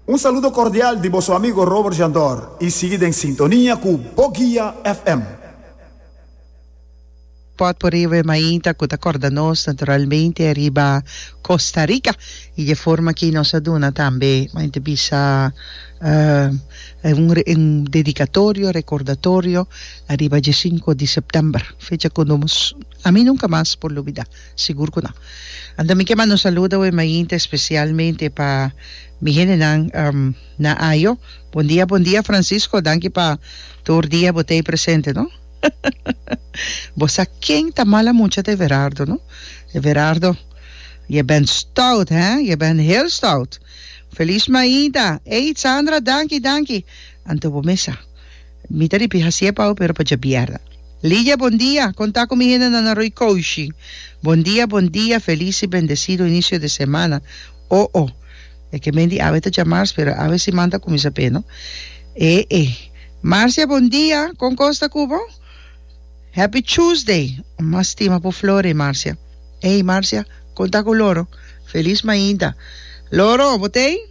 Un saludo cordial di boso amigo Robert Jandor y sigui den sintonia cu Bo Guia FM. Port por riba e mainta cu ta corda nos naturalmente riba Costa Rica y dje forma aki nos a duna tambe mainte bisa un dedicatorio, recordatorio, riba dje cinco di september, fecha cu nos, ami nunca mas por lubida. Sigur cu no. Anto mi ke manda un saludo awe mainta especialmente pa mi hendenan na Ajo. Bon dia bon dia Francisco, danki pa tur dia bo ta ey presente no. Bo sa ken ta mala mucha ta Everardo no. Everardo je bent stout hè, je bent heel stout. Feliz mainta. Ey Sandra danki danki. Anto bo mes sa. Mi ta ripi hasi e pau pero pa djabièrda. Lidia, Bon dia! Kon ta ku mi hende nan Aroi Koushi? Bon dia, bon dia, felis i bendesido inisio di semana. O o. E ke men di awe ta djamars pero awe siman ta kuminsa pe no. E e. Marcia, Bon dia! Kon kos ta ku bo? Happy Tuesday! Mas stima por Flore, Marcia. Ey, Marcia, kon ta ku Loro? Felis mainta. Loro, bo t'ei?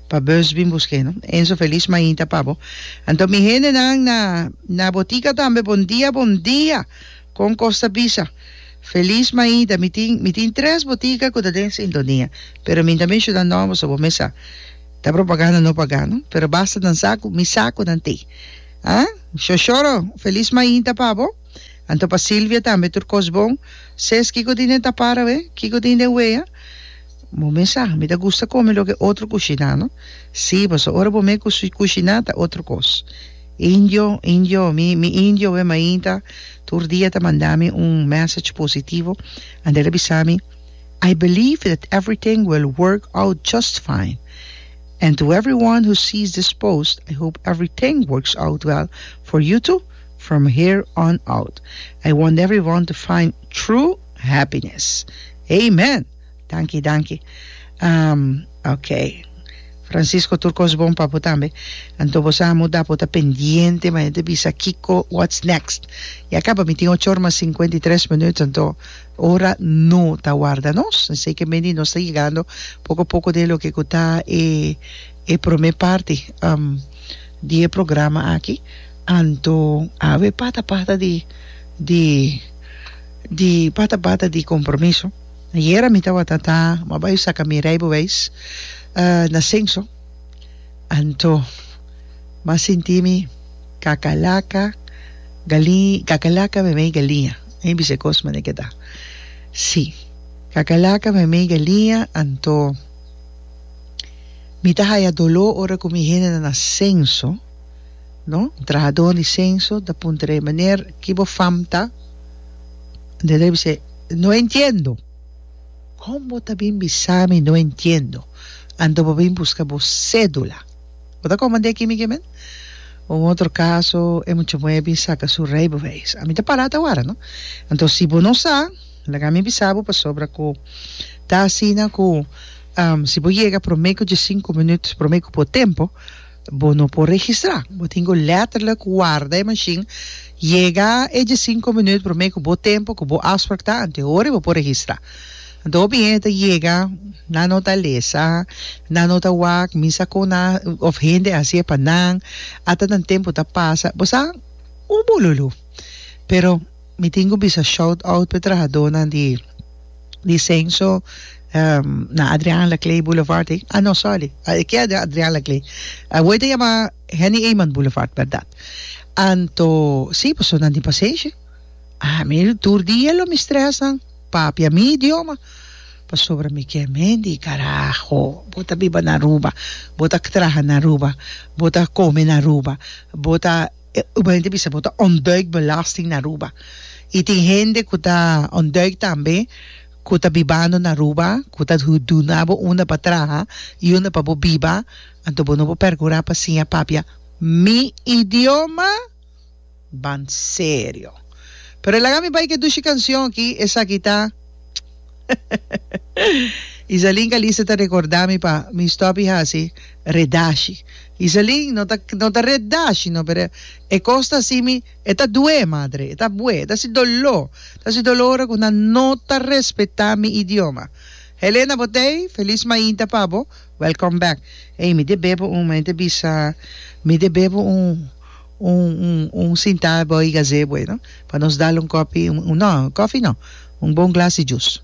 Pa bus bin busk'é no. Enzo Felis mainta pa bo. Anto mi hendenan na na botica tambe bon dia bon dia con cos ta bisa. Felis mainta mi tin mi tin tres botica cu ta den sintonia pero mi tambe shuda no boso bo mes sa ta propaganda no paga no pero basta nan sa cu mi sa cu nan t'e ha sho shoro Felis mainta pa bo anto pa Silvia tambe tur cos bon ses kico tin den tapar awe kico tin den wea. Bo mes sa, mi ta gusta kome loke otro kushiná, no? Sí, pasobra ora bo mes kushiná ta otro kos. Indio, indio, mi, mi indio e mainta tur dia ta manda mi un message positivo, ande el a bisa mi, I believe that everything will work out just fine. And to everyone who sees this post, I hope everything works out well for you too from here on out. I want everyone to find true happiness. Amen! Danki danki am ok Francisco tur kos bon pa bo tambe anto bo sa muda bo ta pendiente ma e ta bisa kiko whats next ya kaba mi tin ochor mas singkwenta i tres minut anto ora no ta warda nos esei ke meni nos ta yegando poko poko den loke ku ta e e prome parti am di e programa aki anto awe pata pata di di di pata pata di kompromiso. Ayera mi tawata ta ma bai saka mi rijbewijs na Sengso anto ma sinti mi kakalaka gali kakalaka memei galiña e bisa e kos mane keda si kakalaka memei galiña anto mi ta haya dolo ora ku mi hende na Sengso no trahadon di Sengso ta puntra e meneer ki bo fam ta meneer bisa e No entiendo! Kon bo ta bin bisa mi no entiendo? Anto bo bin buska bo sedula. Bo ta komandé kimi ke men? Un otro kaso, e muchamuhé bin saka su reibeweis. Ami ta pará ta wara, no? Anto si bo no sa, laga mi bisa bo pasobra ku ta asina ku si bo yega promé ku diesinku minut, promé ku bo tempo, Bo no por registrá. Bo tin cu letterlijk warda e machine, yega e diescinco minuut promé cu bo tempo cu bo afspraak ta, anto hora bo por registrá. Anto hopi hende ta yega, nan no ta lesa, nan no ta wak, mi sa con nan, of hende a hacié pa nan, ata nan tempo ta pasa, bo sa, un bululú. Pero. Mi tin cu bisa shout out p'e trahadonan di di censo na Adriaan Laclay Boulevard ei, ah no sorry e ke a Adriaan Laclay awoy ta yama Henny Eman Boulevard berdad anto si personan di Paseshi ah mi tur dia lo mi stress nan papia mi idioma pasobra mi ke men di carajo bo ta biba na Aruba bo ta traha na Aruba bo ta come na Aruba bo ta E ugbo hende bisa bo ta ontduik belasting na Aruba. I tin hende ku ta ontduik tambe ku ta bibando na Aruba, ku ta duna bo unda pa traha i unda pa bo biba. Anto bo no por pergurá pa siña papia mi idioma? Ban serio! Pero laga mi bai ke dushi kansion aki, esaki ta. Isalin Calista ta recorda mi pa mi stop y haci redashi. Isalin no ta no ta redashi no pero e cos ta si mi e ta due madre e ta bue e ta si dolo ta si dolo ora cu nan no ta respeta mi idioma. Helena Botey feliz mainta pa bo welcome back. Ey mi debe bo un mi ta bisa mi debe bo un. un un un sintá abao y gazebo e no pa nos dal un kopi no kofi no un bon glas di jus.